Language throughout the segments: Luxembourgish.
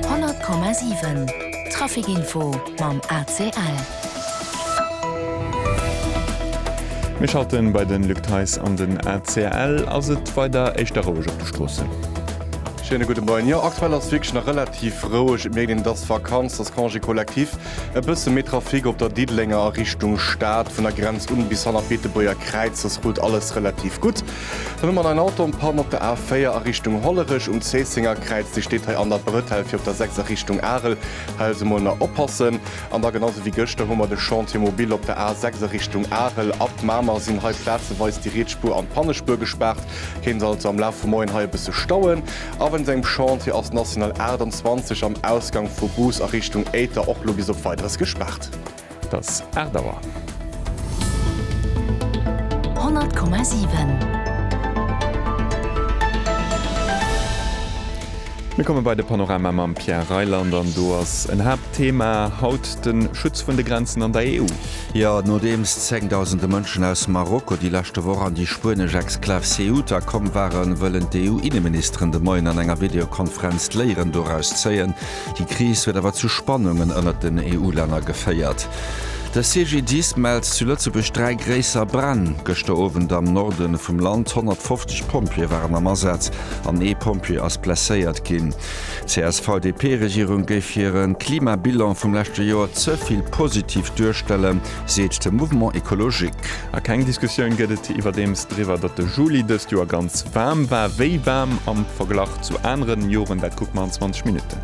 100,7 Traficinfo mam ACL. Mir schalte bei de Luc Theis an den ACL. Ass et weider éischter roueg op de Stroossen? Schéine gudde Moien. Jo, aktuell ass wierklech nach relativ roueg. Et mierkt een, et ass Vakanz, et ass Congé collectif. E bësse méi Trafic op der Diddelenger a Richtung Stad, vun der Grenz un bis hanner d'Beetebuerger Kräiz. Sos rullt alles relativ gutt. Den Numm an ein Auto en panne op der A 4 a Richtung Hollerech. Um Zéisséngerkräiz, Dir steet hei an der Brëtell fir op der 6 a Richtung Arel, hei also mol nach oppassen. An da genau sou wéi gëschter hu mer de Chantier mobile op der A 6 a Richtung Arel. Ab Mamer sinn hei plazeweis déi Rietsspuer an d'Pannespuer gespaart, kéint also am Laf vum Moien hei e bësse stauen. A wéinst engem Chantier ass d'National 28 am Ausgank vu Bous a Richtung Éiter och lo bis op Weideres gespaart. 't ass 8 Auer. 100,7. Mir komme bei de Panorama mam Pierre Reyland an do ass en Haaptthema haut de Schutz vun de Grenzen an der EU. Jo, nodeems zéngdausende Mënschen aus Marokko déi leschte Woch an déi spuenesch Exklav Ceuta komm waren, wëllen d'EU-Inneministeren de Moien an enger Videokonferenz d'Léieren doraus zéien, Déi Kris huet awer zu Spannungen ënnert den EU-Länner geféiert. De CGDIS mellt zu Lëtzebuerg dräi gréisser Bränn gëschter Owend am Norde vum Land. 150 Pompjeeë waren am Asaz an ee Pompjee ass blesséiert ginn. D'CSV-DP-Regierung géif hire Klimabilan vum leschte Joer ze vill positiv duerstellen, seet de Mouvement Ecologique. A keng Diskussioun gëtt et iwwerdeems driwwer, datt de Juli dëst Joer ganz waarm war. Wéi waarm am Verglach Zu aneren Joren, dat kuckt mer an 20 Minutten.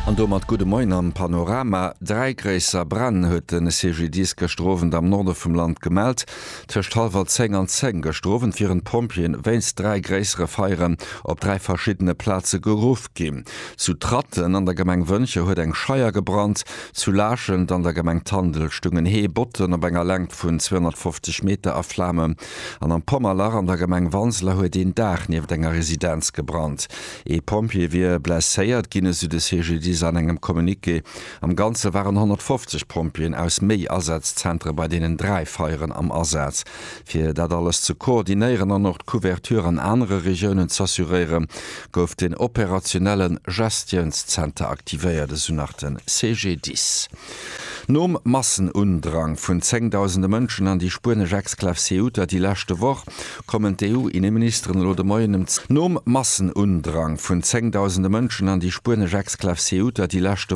An domat gudde Moien am Panorama. Dräi gréisser Bränn huet de CGDIS gëschter Owend am Norde vum Land gemellt. Tëscht hallwer 10 an 10 gëschter Owend wieren d'Pompjeeën wéinst dräi gréissere Feieren op dräi verschiddene Plaze geruff ginn. Zu Tratten an der Gemeng Wëncher huet eng Scheier gebrannt. Zu Laachent an der Gemeng Tandel stungen Hee Botten op enger Längt vun 250 Meter a Flamen. An am Pommerlach an der Gemeng Wanseler huet een Daach nieft enger Residenz gebrannt. Ee Pompjee wier blesséiert ginn, esou de CGDIS an engem Communiqué. Am Ganze waren 150 Pompjeeën aus méi Asazzentere bei deenen dräi Feieren am Asaz. Fir dat alles ze koordinéieren an och d'Couverture an anere Regiounen z'assuréiere gouf den operationelle Gestiounszenter aktivéiert, esou nach de CGDIS. Nom Massenundrang vun zéngdausende Mënschen an déi spuenesch Exklav Ceuta déi leschte Woch, kommen d'EU-Inneministeren elo de Moien ëm. Nom Massenundrang vun zéngdausende Mënschen an déi spuenesch Exklav Ceuta déi leschte.